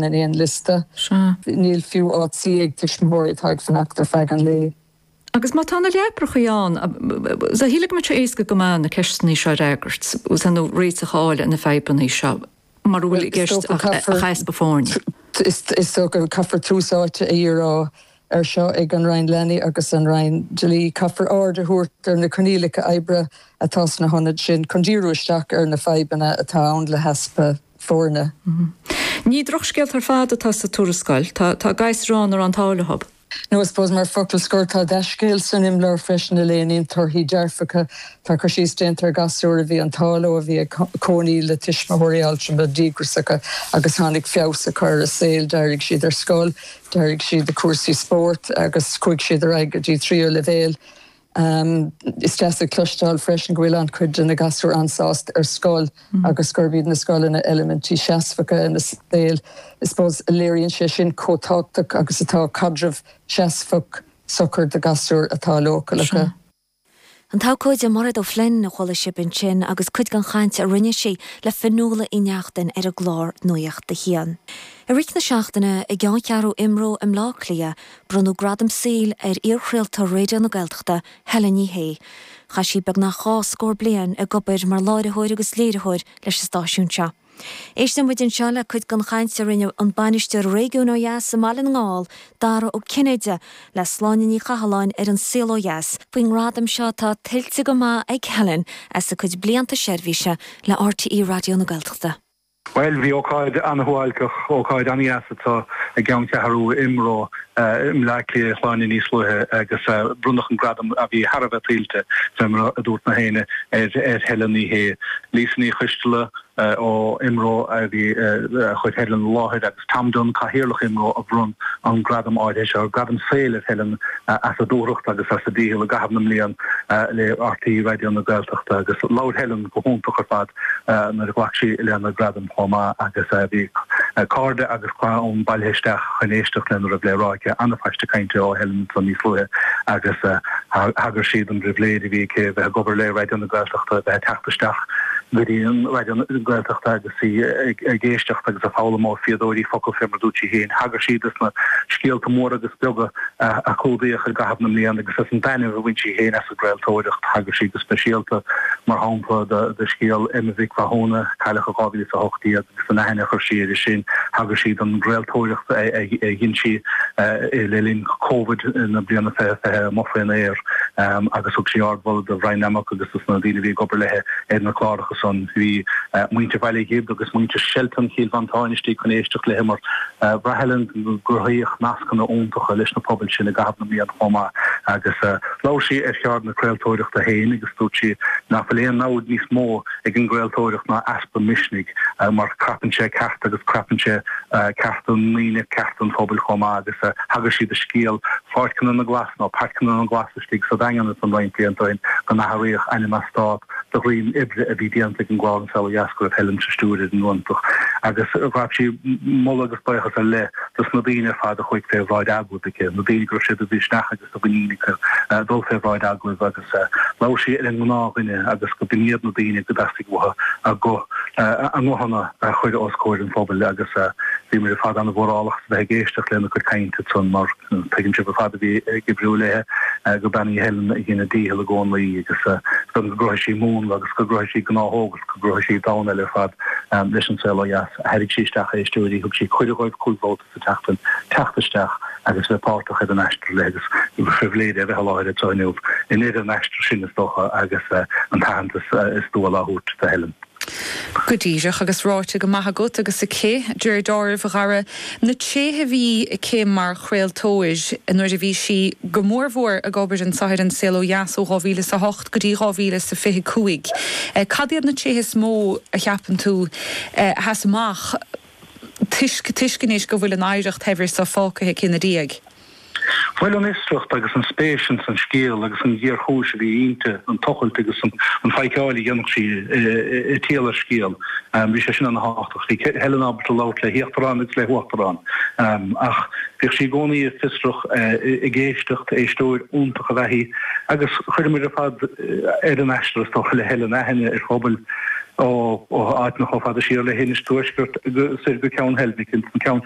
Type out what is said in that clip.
an liosta. Níl fiú áit suí ag tuismitheoirí atá ag fanacht ar feadh an lae. Agus má tá na leaprachaí ann, shílfeá go mbeadh sé éasca go maith na ceisteannaí seo a fhreagairt, nó réiteach a fháil ar na fadhbannaí seo, mura bhfuil i gceist ach easpa foirne. Is dócha go gcaithfear tús áite a dhíriú air seo ag an Roinn Leanaí agus an Roinn Dlí. Caithfear aird a thabhairt ar na coinníollacha oibre atá sna hionaid sin chun díriú isteach ar na fadhbanna atá ann le heaspa foirne. Ní drochscéalta ar fad atá sa tuarascáil. Tá gasúr ann an-tall hob. Nó I suppose mar focal scoir, tá dea-scéal san imleabhar freisin a léiríonn torthaí dearfacha. Tá cur síos déanta ar ghasúr a bhí an tall ó a bhí ag cónaí le tuismitheoirí altrama díograsacha agus tháinig feabhas ar a saol. D'éirigh siad ar scoil, d'éirigh siad i cúrsaí spóirt agus chuaigh siad ar aghaidh go dtí tríú leibhéal. Is deas cloisteáil freisin go bhfuil an-chuid de na gasúir an-sásta ar scoil agus gurb iad na scoileanna eilimintí seasmhacha ina stéal. I suppose léiríonn sé sin chomh tábhachtach agus atá caidreamh seasmhach socair do ghasúir atá leochaileacha. Sea. An t-abhcóide Mairéad O'Flynn a chuala sibh ansin agus cuid den chaint a rinne sí le Fionnuala Uí Neachtain ar an gclár Nuacht a hAon. I rith na seachtaine, i gceanncheathrú Immro i mBleá Cliath, Bronnadh Gradam Saoil ar iarchraoltóir Raidió na Gaeltachta, Helen Ní Shé. Chaith sí beagnach dhá scór bliain ag obair mar láiritheoir agus léiritheoir leis an stáisiún seo. Éistfidh muid anseo le cuid den chaint a rinne an Bainisteoir Réigiúin ó dheas i mBaile na nGall, Dara Ó Cinnéide, le Sláine Ní Chathalláin ar An Saol ó Dheas, faoin ngradam seo atá tuillte go maith ag Helen as a cuid blianta seirbhíse le RTÉ Raidió na Gaeltachta. Bhuel, bhí ócáid an-shuáilceach, ócáid an-deas atá i gceanncheathrú Immro i mBleá Cliath Shláine níos luaithe agus bronnadh an gradam a bhí thar a bheith tuillte, fé mar a dúirt mé féin, ar Helen Ní Shé. Lisa Ní Choisteala ó Immro a bhí, a chuir Helen i láthair agus Tom Dunne, Cathaoirleach Immro a bhronn an gradam áirithe seo, gradam saoil ar Helen as a dúthracht agus as a dícheall i gcaitheamh na mblian le RTÉ Raidió na Gaeltachta agus labhair Helen go hiontach ar fad. nuair a ghlac sí lena gradam chomh maith agus bhí cairde agus clann bailithe isteach chun éisteacht lena raibh le rá aici. An-phaiste cainte ó Helen ansan níos luaithe agus thagair sí don phribhléid a bhí aici bheith ag obair le Raidió na Gaeltachta, bheith ag teacht isteach go dtí an Raidió na Gaeltachta agus í ag éisteacht agus ag foghlaim ó fhíodóirí focal fé mar a dúirt sí féin. Thagair sí dos na scéalta móra agus beaga a clúdaíodh i gcaitheamh na mblian agus as an dtaitneamh a bhain sí féin as. sa gcraoltóireacht thagair siad go speisialta, mar shampla do scéal Emma Mhic Mhathúna, a cailleadh i 2000 is a hocht déag agus an aithne a chuir sí uirthi sin, thagair siad don gcraoltóireacht a dhein sí le linn Covid na bliana 2020 amuigh faoin aer agus thug sí ardmholadh do Bhrian Nammock agus do na daoine a bhí ag obair léi ar na cláracha san. Bhí muintir Bhaile Ghib agus muintir Shelton Chill Mhantáin istigh chun éisteacht léi mar bhraith Helen go gcruthaíodh nascanna iontacha leis na pobail sin i gcaitheamh na mblian chomh maith agus Labhair sí ar cheard na craoltóireachta féin agus dúirt sí nach bhfuil aon namhaid níos mó ag an gcraoltóireacht ná easpa misnigh mar crapann sé cearta agus crapann sé cearta na ndaoine, cearta an phobail chomh maith agus thagair sí do scéal Pháirceanna na Glas nó Páirceanna an Glas istigh sa Daingean ansin roinnt blianta ó shin go n-athraíodh ainm an eastáit de thoradh oibre a bhí déanta ag an gclár An Saol Ó Dheas go raibh Helen sa stiúir air go hiontach agus ghabh sí moladh agus buíochas ar leith dos na daoine ar fad a chuaigh fé bhráid agallaimh, na daoine go raibh sé de mhisneach agus. de mhuinín acu dul fé bhráid agallaimh agus labhair sí ar an ngnáthdhuine agus go b'iad na daoine go dteastaigh uathu a guth a nguthanna a chur os comhair an phobail agus bhíomar ar fad an-mhórálach as a bheith ag éisteacht lena cuid cainte ansan mar tuigeann sibh ar fad a bhí ag oibriú léi gur bean í Helen a dhein a dícheall i gcónaí agus go gcruthaigh sí múnla agus go gcruthaigh sí gnáthóg agus go gcruthaigh sí domhan eile ar fad leis An Saol Ó Dheas. Tharraing sí isteach éisteoirí, thug sí cuireadh dóibh cúig bhabhta, sa tseachtain, teacht isteach agus bheith páirteach ar an aistear léi agus ba phribhléid é a bheith i láthair anseo inniu i ndeireadh an aistir sin is dócha agus an t-aitheantas is dual á thabhairt do Helen. Go díreach agus ráite go maith agat agus aici, dáiríribh a Dhara, na tréithe a bhí aici mar chraoltóir nuair a bhí sí go mór mhór ag obair anseo ar An Saol Ó Dheas ó 2000 is a hocht go dtí 2000 is a fiche cúig. Cad iad na tréithe is mó a cheapann tú a sheas amach? toisc, toisc anois go bhfuil an oidhreacht shaibhir so fágtha aici ina diaidh. Bhuel an fhiosracht agus an spéis ins an scéal agus an ghéarchúis a bhí inti, an tochailt agus an phaidhceáil a dhéanfadh sí ag triall ar scéal, bhí sé sin ana thábhachtach. Bhí Helen ábalta labhairt le híochtarán agus le huachtarán ach bhíodh sí i gcónaí fiosrach ag éisteacht, éisteoir iontach ab ea í agus chuireamar ar fad ar an aistear is dócha le Helen aithne ar phobal ó áiteanna chomh fada siar le hInis Tuaisceart soir go Ceann Heilbhic, ins an cheantar